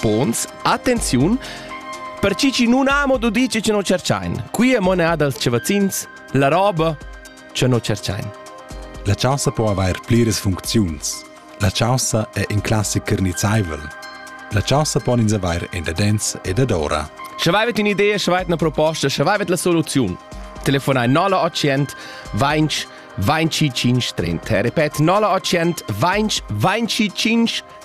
Pons, attenziun, per chi chi nun amo do dir che non cerchain. Qui è monea dals cevazzins, la roba che non cerchain. La chaussa po avair pliras funcziuns. La chaussa è in classic carnizzaivel. La chaussa pon ins avair in dadens e dadora. Sche vaivet in idea, sche vaivet una proposta, sche vaivet la soluziun. Telefonai 0800 20 25 30. Repet 0800 20 25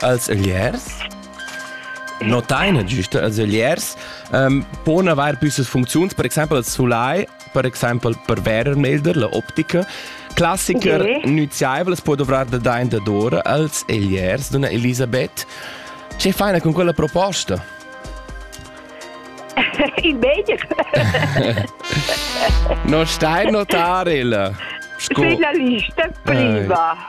als ögliers notain giusta als ögliers um, pon avair püssas funcziuns, per exempel als sulai, per exempel per Wärmermelder, la optica. Klassiker okay. nuziaivelas può dovrar da dain dadora als ögliers, donna Elisabeth. Che faina con quella proposta? Il meglio. non stai notare il sco. Sei la lista prima.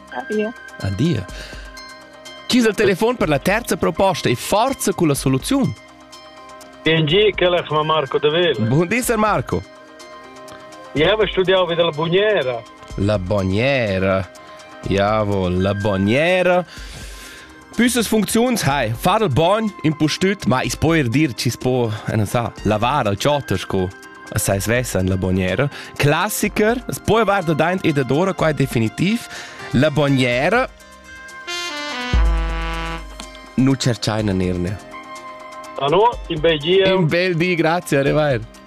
Adia. Adia. Chi es il telefon per la terza proposta e forza con la soluziun? Bien gi, quellas ma Marco de Vela. Buon di, Sir Marco. Io ho studiato vida la bugnera. La bugnera. Iavo, la bugnera. Püssas funcziuns hai, far il bogn, impustüt, ma i's po eir dir chi's po, non sa, lavar al chotter sco sai svessa in la bognera. Classiker, es poi avar da daint e da dora qua definitiv. La bognera nu cerchaina nirne. Hallo, in bel dia. Un bel di, grazie, arrivare.